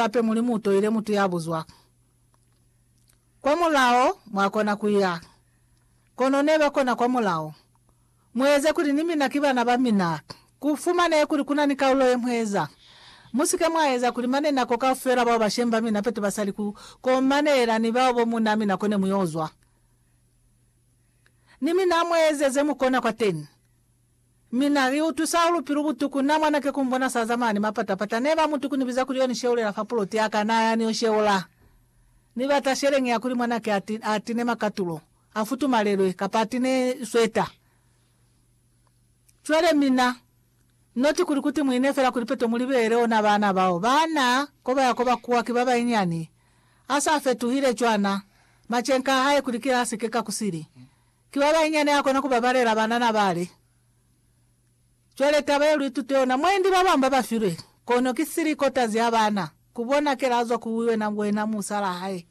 Hape Mulimu utoile mutu yabuzwa kwa mulao mwakona kuya, kono neba kona kwa mulao. Mueze kuli ni mina ki bana bamina. Kufumanehe kuli kuna ni kaulo yemueza. Musike mwaeza kuli mane nako kaufela bao bashemi bamina pete basali ku komanela ni bao bo munaa mina kone muyozwa ni mina. Mueze zemukona kwateni Mina, li utusa ulu pilu butuku na mwana ke kumbona sa zamana ni mapata pata ne ba mutuku ni biza kuli yo ni sheulela fa puloti yaka na ya ni yo sheula ni bata sheleng ya kuli mwana ke ati a tine makatulo a futumalelwe kapa a tine sweta cwale mina noti kuli kuti muine fela kuli peto muli beele ona bana bao ba na koba ya koba kuwa ki ba bainyani a sa fetuhile cwana machenka a hae kuli kila a si ke ka kusili Ki ba bañi ya ne a kona ku babalela banana bale? Cwale taba ye lu itute yona, mwendi ba bañwi ba ba filwe, kono ki sili kotazi ya bana, ku bonakela a zwa ku wena, wena musalaa hae.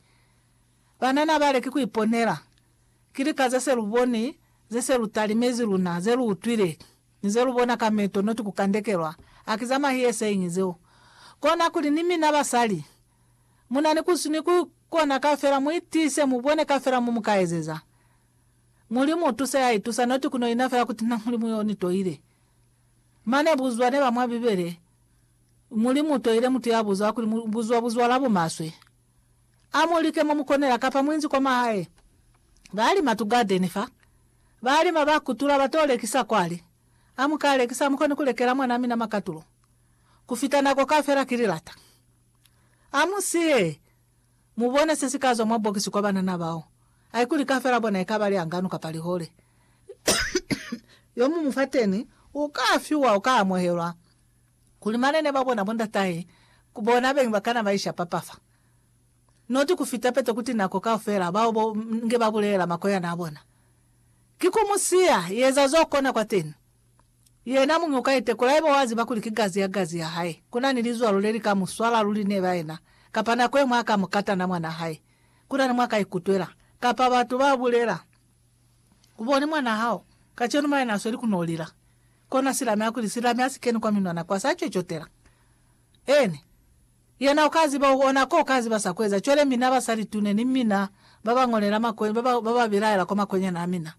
Banana bale ki ku iponela. Ki lika ze se lu boni, ze se lu talimezi luna, ze lu utwile, ni ze lu bona ka meto, noti ku kandekelwa. Haki za mahiyeseñi zeo. Kona kuli ni mina basali. Munani kusi ni ku kona kafela, mu itiise, mu bone kafela mo mu ka ezeza. Mulimu u tuse ya itusa, noti ku no ina fela kuti na Mulimu yo ni toile. Mane buzwa ne ba mwa Bibele, Mulimu u toile mutu ya buza kuli, Mu buzwa buzwa la bumaswe. A mu like mo mu konela, kapa mu inzi kwa mahae. Ba lima tu gadeni fa. Ba lima, ba kutula, ba to lekisa kwale. A mu ka lekisa, ha mu koni ku lekela mwan'a mina makatulo. Ku fita nako kafela, ki li lata. A mu siye! Mu bone se si ka zwa mwa bokisi kwa banana bao. Haikuli kafela bona i ka ba lihanganu kapa lihole, yo mu mu fateni u ka fiwa, u ka amuhelwa, kuli malene ba bona, bondatahe, ku bona beñi ba kana ba ishapa pa fa. Noti ku fita pete kuti nako kaufela bao bo nge ba bulelela makoyana a bona, Ki ku mu siya, yeza zo kona kwateni. Yena muñi uka itekola haiba wa ziba kuli ki gazi ya gazi ya hae, kuna ni lizwalo le li ka mu swala luli neba yena, kapa nako yemwe aka mu kata na mwana hae. Kuna ni mwa ka ikutwela, kapa batu ba bulela, U boni mwana hao, kacenu mwa yena asweli kuno lila. Kona silami a kuli silami asi keni kwa minwana kwa sa cocotela. Eni, yena uka ziba, u ona ko uka ziba sa kueza. Cwale mina ba sa litune ni mina, ba ba ngolela makwenya, ba ba, ba ba bilaela kwa makwenya na mina.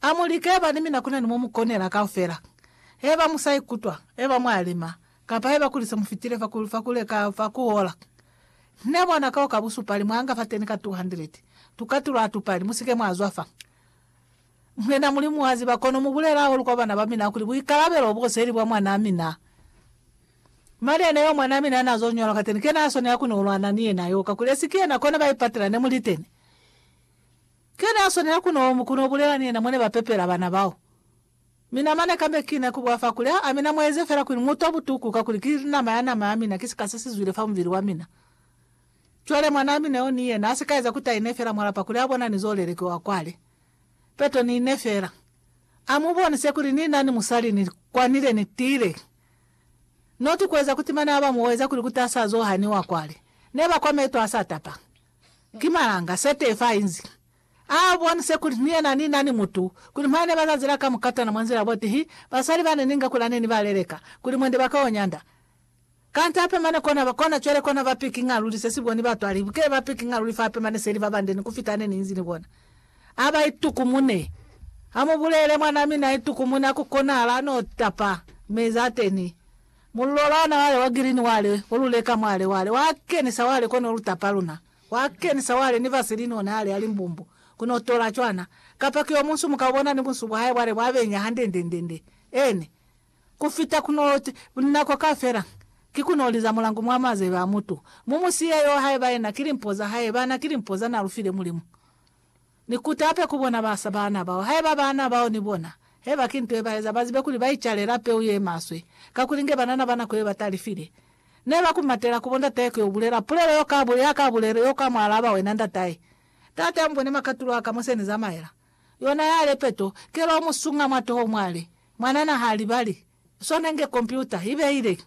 A mu like heba ni mina ku na ni mo mu konela kaufela. Heba mu sa ikutwa, heba mwa lima, kapa heba kuli se mu fitile fa ku, fa ku leka fa ku ola. Ne bona kao ka busupali mwa nga fateni ka 200. Tukatulo ha tu pali. Mu si ke mwa zwa fa. Mwena Mulimu wa ziba, kono mu bulele hahulu kwa bana ba mina kuli buikalabelo bo seli bwa mwanaa mina. Mali yene yeo mwanaa mina na zo ñola kateni, ke na swanela ku ni ulwana ni yena yo, kakuli esi ki yena kona ba ipatela ne mu liteni. Ki yena ya swanela ku no omu ku no bulela ni yena mwa ne ba pepela bana bao. Mi nama ne kambe ki ne ku bwa fa kuli, Ha a mina mwa eze fela kuli mu utwa butuku kakuli ki linama ya nama ya mina, ki sika se si zwile fa mubili wa mina. Cwale mwanaa mina yo ni yena a si ka eza kuti a ine fela mwa lapa kuli a bona ni zo leleke wa kwale. Peto ni ine fela. A mu bonise kuli ni na ni musali ni kwanile ni tiile. Not ku eza kuti mane a ba mu oeza kuli kuti a sa zo haniwa kwale. Ne ba kwa meto a sa tapa. Ki malanga Setefa a inzi a bonise kuli ni yena ni na ni mutu, kuli mwa ne ba za zila ka mukatana mwa nzila botihi, basali ba ne ni nga kula ne ni ba leleka, kuli mwende ba ka o nyanda. Kanti ape mane kona ba, kona cwale kona ba pikinga luli se si boni batwa libi, ke ba pikinga luli fa ape mane seli ba bande ni kufita ne ni inzi ni bona. A ba itukumune. A mu bulele mwan'a mina a itukumune, a ku konahala, a n'o tapa meza ateni. Mulolana wale wa girini wale o lu leka mwale wale, wa kenisa wale kono lu tapa luna. Wa kenisa wale ni vaseline ona ale ali mbumbu, kono tola cwana. Kapa ki omunsu muka ubona ni bunsu bwa hae bwale bwa benya handendendende. Ene. Ku fita kuno ti, nako kafela, ki kuno liza mulangu mwa mazebe a mutu. Mu mu siye yoo haiba yena ki limpo za hae, bana ki limpo za na lu file Mulimu. Ni kutape ku bona ba sa baana bao, haiba baana bao ni bona, haiba ki nto ye ba eza, ba zibe kuli ba icalela peu ye maswe, kakuli inge banana ba nako ye ba talifile. Ne ba ku matela ku bo ndatahe ku yo bulela pulelo yo ka, ya ka bulelo yo ka mwa alaba wena ndatahe, Taata, mu bone makatulo a ka mo se ni zamaela. Yona yale peto, kelo o mu sunga mwa toho mwale. Mwanana ha libali. Sona inge kompyuta, i beile.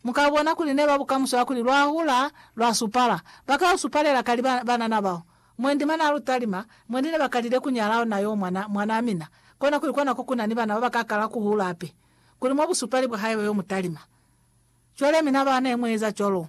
Mu ka bona kuli ne lwa bukamuso ya kuli lwa hula, lwa supala. Ba ka lu supalela kali ba, banana bao. Mwendi mwa n'a lu talima, mwendi ne ba kalile ku nyala ona yo mwana, mwanaa mina. Kona kuli kona ko ku na ni bana ba ba ka kala ku hula hape. Kuli mwa busupali bwa hae yo mu talima. Cwale mina ba ne mu eza cwalo.